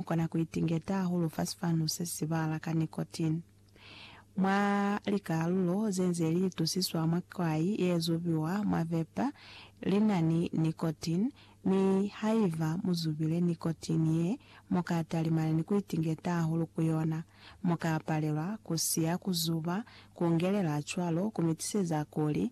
Mu kona ku itingeta hahulu fa sifanu se si sibala ka nicotine. Mwa likalulo ze nze li itusiswa mwa kwai ye zubiwa mwa vapor, li na ni nicotine, mi haiba mu zubile nicotine ye, mu ka talimana ni ku itingeta hahulu ku yona. Mu ka palelwa ku siya ku zuba, ku ngelela cwalo ku mi tiseza kuli.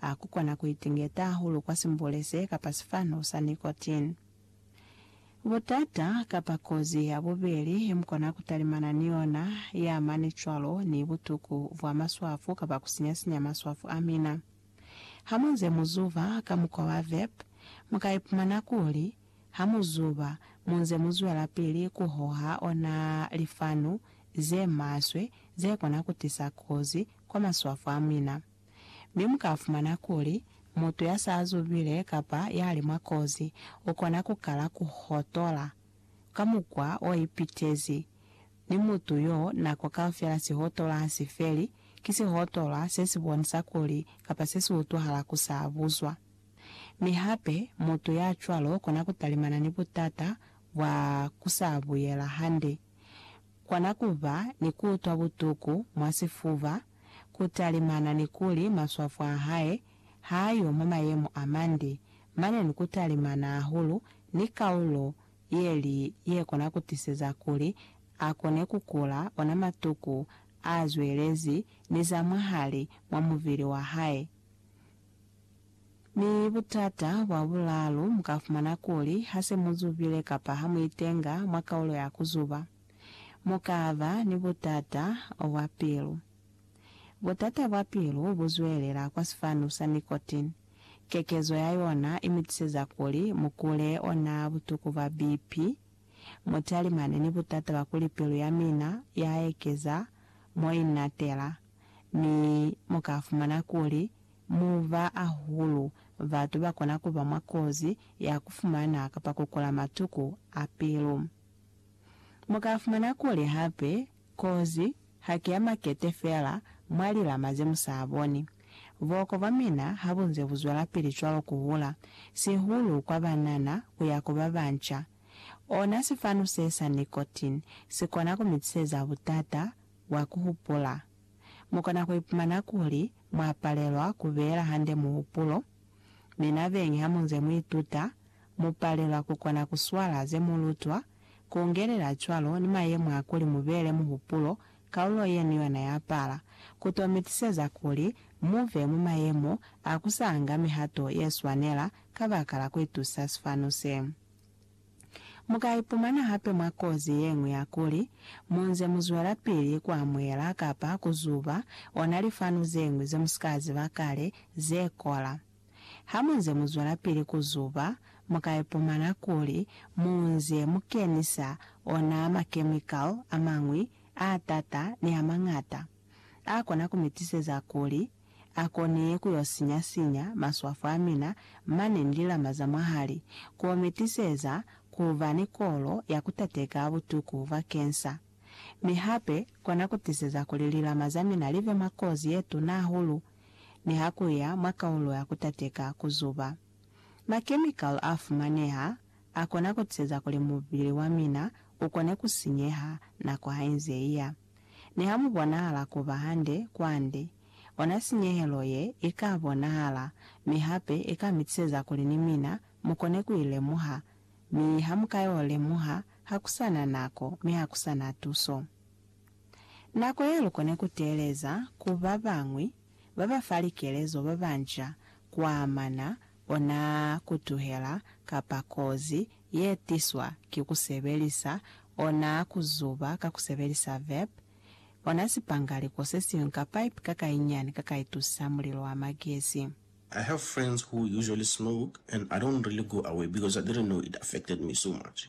Ha ku kona ku itingeta hahulu kwa simbule se kapa sifanu sa nicotine. Butata kapa kozi ya bubeli ye mu kona ku talimana ni yona ye amani cwalo ni butuku bwa maswafu kapa ku sinya-sinya maswafu a mina. Ha mu nze mu zuba ka mukwa wa vape, mu ka ipumana kuli, ha mu zuba, mu nze mu zwelapili ku hoha ona lifanu ze maswe ze kona ku tisa kozi kwa maswafu a mina. Mi mu ka fumana kuli, mutu ya sa zubile kapa ya li mwa kozi, u kona ku kala ku hotola ka mukwa o ipitezi. Mi mutu yo, nako kaufela si hotola ha si feli, ki si hotola se si bonisa kuli kapa se si utwahala ku sa buzwa. Mi hape, mutu ya cwalo u kona ku talimana ni butata bwa ku sa buyela hande. Kona ku ba ni ku utwa butuku mwa sifuba, ku talimana ni kuli maswafu a hae ha yo mwa mayemo a mande, mane ni ku talimana hahulu ni kaulo ye li ye kona ku tiseza kuli a kone ku kula ona matuku a zwelezi ni za mwahali mwa muvili wa hae. Mi butata bwa bulaalu, mu ka fumana kuli ha se mu zubile kapa ha mu itenga mwa kaulo ya ku zuba. mu ka ba ni butata bwa pilu. Butata bwa pilu bu zwelela kwa sifanu sa nicotine. Kekezo ya yona i mu tiseza kuli mu kule ona butuku bwa BP. Mu talimane ni butata bwa kuli pilu ya mina ya ekeza mo i natela, mi mu ka fumana kuli mu ba ahulu batu ba kona ku ba mwa kozi ya ku fumana kapa ku kula matuku a pilu. Mu ka fumana kuli hape kozi ha ki ya makete fela mwa lilama ze mu sa boni. Boko bwa mina ha bu nze bu zwelapili cwalo ku hula, sihulu kwa banana ku ya ku ba banca. Ona sifanu se sa nicotine si kona ku mi tiseza butata bwa ku hupula. Mu kona ku ipumana kuli mwa palelwa ku beela hande muhupulo. Mi nabeñi ha mu nze mu ituta, Mu palelwa ku kona ku swala ze mu lutwa, ku ungelela cwalo ni mayemo a kuli mu beele muhupulo kaulo yenu yona ya pala, ku to mi tiseza kuli mu be mwa mayemo a ku sa nga mihato ye swanela kabakala ku itusa sifanu se. Mu ka ipumana hape mwa kozi ye ñwi ya kuli, mu nze mu zwelapili ku amuhela kapa ku zuba ona lifanu ze ñwi ze mu si ka ziba kale, ze kola. Ha mu nze mu zwelapili ku zuba, mu ka ipumana kuli mu nze mu kenisa ona makemikali a mañwi a t'ata ni a mañata a kona ku mi tiseza kuli a kone ku yo sinya-sinya maswafo a mina mane ni lilama za mwahali, ku mi tiseza ku ba ni kolo ya ku tateka butuku bwa kensa, mi hape kona ku tiseza kuli lilama za mina li be mwa kozi ye tuna hahulu. ni ha ku ya mwa kaulo ya ku tateka ku zuba. Makemikali a fumaneha a kona ku tiseza kuli mubili wa mina u kone ku sinyeha nako ha i nze i ya. Ni ha mu bonahala ku ba hande kwande, ona sinyehelo ye i ka bonahala mi hape i ka mi tiseza kuli ni mina mu kone ku i lemuha, mi ha mu ka y'o lemuha ha ku sa na nako mi ha ku sa na tuso. Nako ya lukone ku teeleza ku ba bañwi ba ba fa likelezo ba banca kwa amana ona ku tuhela kapa kozi ye tiswa ki ku sebelisa ona ku zuba ka ku sebelisa vep, ona sipangaliko se siñwi ka pipe ka kainyani ka ka itusa mulilo wa magesi. I have friends who usually smoke and I don't really go away because I didn't know it affected me so much.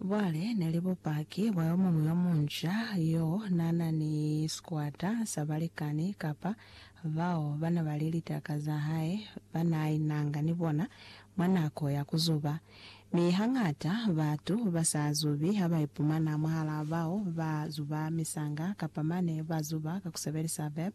Cwale ne li bupaki bwa yo muñwi yo munca yo n'a na ni sikwata sa balikani kapa bao ba ne ba li litaka za hae ba n'a inanga ni bona mwa nako ya ku zuba. Mi hañata batu ba sa zubi ha ba ipumana mwahal'a bao ba zuba misanga kapa mane ba zuba ka ku sebelisa vep.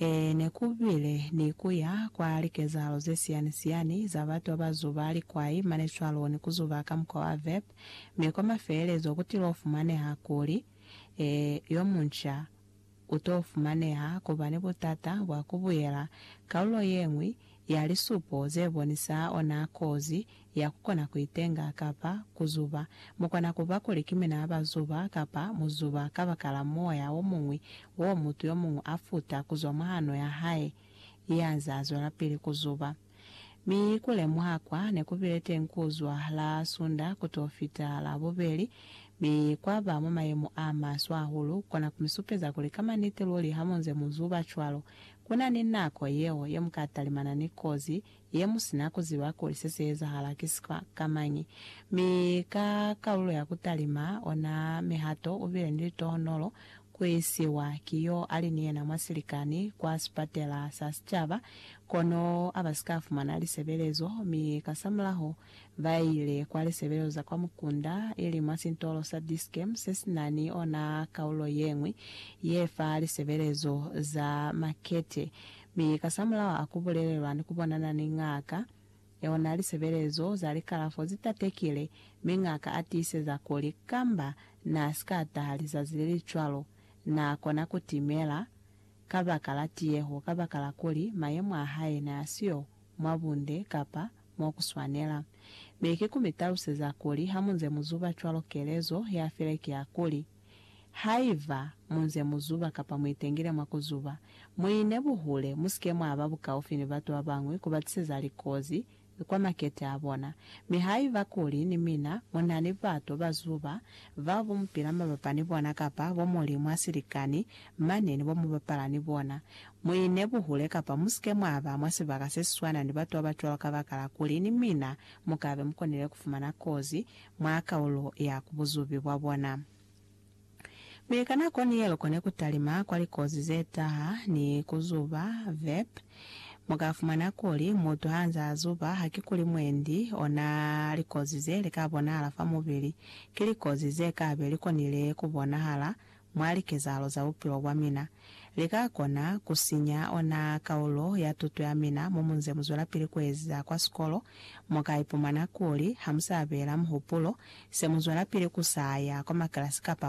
Ee, ne ku bile ni ku ya kwa likezahalo ze siyani-siyani za batu ba ba zuba likwai mane cwaloni, ku zuba ka mukwa wa vep, mi kwa mafelelezo ku tilo fumaneha kuli, Ee, yo munca u to fumaneha ku ba ni butata bwa ku buyela kalulo ye ñwi ya lisupo ze bonisa ona kozi ya ku kona ku itenga kapa ku zuba. Mu kona ku ba kuli ki mina ba zuba kapa mu zuba kabakala moya o muñwi wo mutu yo muñwi a futa ku zwa mwa hano ya hae ya nze a zwelapili ku zuba. Mi ku lemuha kwa ne ku bile teñi ku zwa la Sunda ku t'o fita Labubeli, mi kwa ba mwa mayemo a maswe hahulu, ku kona ku mi supeza kuli ka maniti luli ha mu nze mu zuba cwalo, ku na ni nako yeo ye mu ka talimana ni kozi ye mu si na ku ziba kuli se si ezahala ki sikwa ka mañi. Mi ka kalulo ya ku talima ona mihato, u bile ni litohonolo ku isiwa ki yo a li ni yena mwa silikani kwa sipatela sa sicaba, kono a ba si ka fumana lisebelezo, mi kasamulaho ba ile kwa lisebelezo za kwa mukunda, ili mwa sintolo sa Dischem se si na ni ona kalulo ye ñwi ye fa lisebelezo za makete. Mi kasamulaho a ku bulelelwa ni ku bonana ni ngaka, yeo na li sebelezo za likalafo ze tatekile, mi ngaka a tiiseza kuli kamba na si ka taha lizazi le li cwalo, na kona ku timela kabakala tiyeho kabakala kuli mayemo a hae ne a siyo mwa bunde kapa mo ku swanela. Mi ki ku mi taluseza kuli hamunze mu zuba cwalo kelezo ya file ki ya kuli, Haiba munze muzuba kapa muitengile mwa kuzuba, muine buhule, musike mwaba bukaufi ni batu babañwi kubatiseza likozi kwa makete abona. Mi haiba kuli ni mina munani batu bazuba bao mupila mabapa ni bona kapa bo Mulimu asilikani mane ni bo mubapala ni bona, muine buhule kapa musike mwaba mwa sibaka sesiswana ni batu babacwalo kabakala kuli ni mina mukabe mukonile kufumana kozi mwa kaulo ya ku buzubi bwa bona. Mi ka nako ni yeo kone ku talima kwa likozi ze taha ni ku zuba. Vep. Mu ka fumana kuli, mutu ha nzaa zuba, hakikuli mwendi ona likozi ze li ka bonahala fa mubili. Ki likozi ze ka be li konile ku bonahala mwa likezahalo za bupilo bwa mina, li ka kona ku sinya ona kaulo ya tuto ya mina mo mu nze mu zwelapili ku eziza kwa sikolo. Mu ka ipumana kuli ha mu sa beela muhupulo, se mu zwelapili ku sa ya kwa makilasi kapa